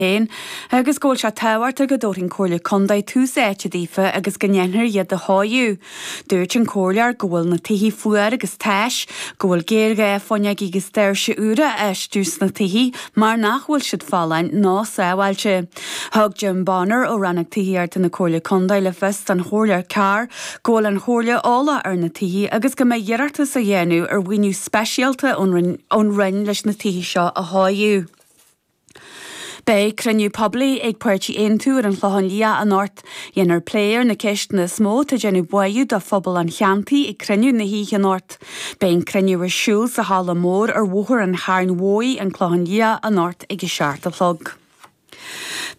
féin agus go bhfuil sé tábhachtach go dtabharfadh an Chomhairle Contae tús áite daofa agus go ndéanfar iad a dheisiú. Dúirt an Comhairleoir go bhfuil na tithe fuar agus tais, go bhfuil géarghá fuinneogaí agus doirse úra a fheistiú sna tithe mar nach bhfuil siad folláin ná sábháilte. Thug Jim Bonner ó Rannóg Tithíochta na Comhairle Contae le fios don Chomhairleoir Carr go bhfuil an Chomhairle eolach ar na tithe agus go mbeidh iarratas á dhéanamh ar mhaoiniú speisialta ón Roinn leis na tithe seo a athchóiriú. Beidh cruinniú poiblí ag Páirtí Aontú ar an Chlochán Liath anocht. Déanfar plé ar na ceisteanna is mó atá ag déanamh buairt do phobal an cheantair ag cruinniú na hoíche anocht. Beidh an cruinniú ar siúl sa Chaladh Mhór ar Bhóthar an Chairn Mhóir, An Clochán Liath, anocht ag a seacht a chlog.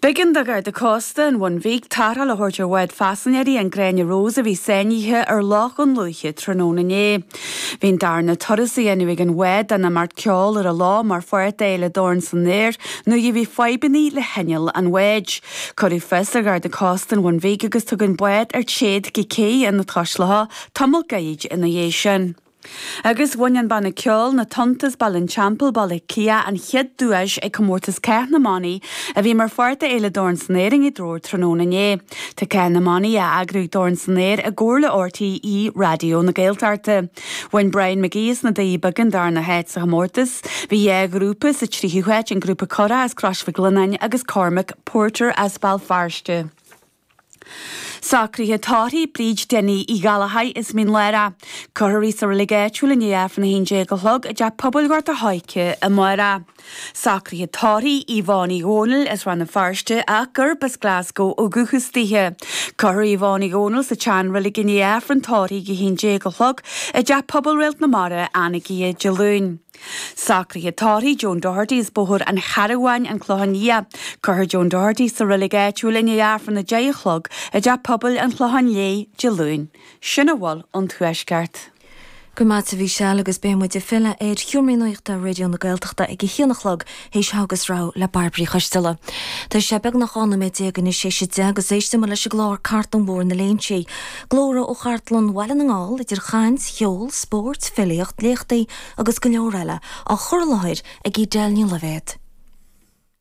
B'éigean do Gharda Cósta an Bhun Bhig tarrtháil a thabhairt ar bhád paisinéirí, an Gráinne Rose, a bhí sáinnithe ar Loch Dhún Lúiche tráthnóna inné. Bhí an darna turas a dhéanamh ag an bhád de na báid cheoil ar an lá mar pháirt d'Fhéile Dorn San Aer nuair a bhí fadhbannaí le hinneall an bháid. Cuireadh fios ar Gharda Cósta an Bhun Bhig agus tugadh an bád ar téad go cé Ionad Cois Locha tamall gairid ina dhiaidh sin. Agus bhain an banna ceoil, Na Tonnta as Baile an Teampaill, Baile Átha Cliath, an chéad duais ag comórtas Cath na mBannaí a bhí mar pháirt d'Fhéile Dorn San Aer i nGaoth Dobhair tráthnóna inné. Tá Cath na mBannaí á eagrú ag Dorn San Aer i gcomhar le RTÉ Raidió na Gaeltachta. Bhain Brian McGee as na Doirí Beaga an darna háit sa chomórtas. Bhí dhá ghrúpa sa tríú háit, an grúpa Cora as Crois Mhic Lionnáin agus Cormac Porter as Béal Feirste. Socruithe tórraimh, Bríd Denny Uí Ghallchóir as Mín Lárach. Cuirfear í sa reilig áitiúil i ndiaidh Aifreann a haon déag a chlog i dTeach Pobail Ghort a' Choirce amárach. Socruithe tórraimh Yvonne Uí Dhónaill as Rann na Feirste ach gurb as Glasgow ó dhúchas dithe. Cuirfear Yvonne Uí Dhónaill sa tseanreilig i ndiaidh Aifreann tórraimh ag 11 a chlog i dTeach Pobail Réalt na Mara, Anagaire, Dé Luain. Socruithe tórraimh Joan Doherty as Bóthar an Charabháin, An Clochán Liath. Cuirfear Joan Doherty sa reilig áitiúil i ndiaidh Aifreann a deich a chlog i dTeach Pobail an Chlocháin Léith, Dé Luain. Sin a bhfuil ón Tuaisceart. Go raibh maith agat a Mhichelle agus beidh muid ag filleadh ar sheomraí nuachta Raidió na Gaeltachta ag a haon a chlog théis Iris Aniar le Bairbre Uí Choistealbha. Tá sé beagnach 12 noiméad anois théis a deich agus éistimid leis an gclár Cartlann Bhóthar na Léinsí. Glórtha ó Chartlann Bhaile na nGall, idir chaint, cheol, spóirt, filíocht, léachtaí agus go leor eile, á chur i láthair ag Edel Ní Loibhéad.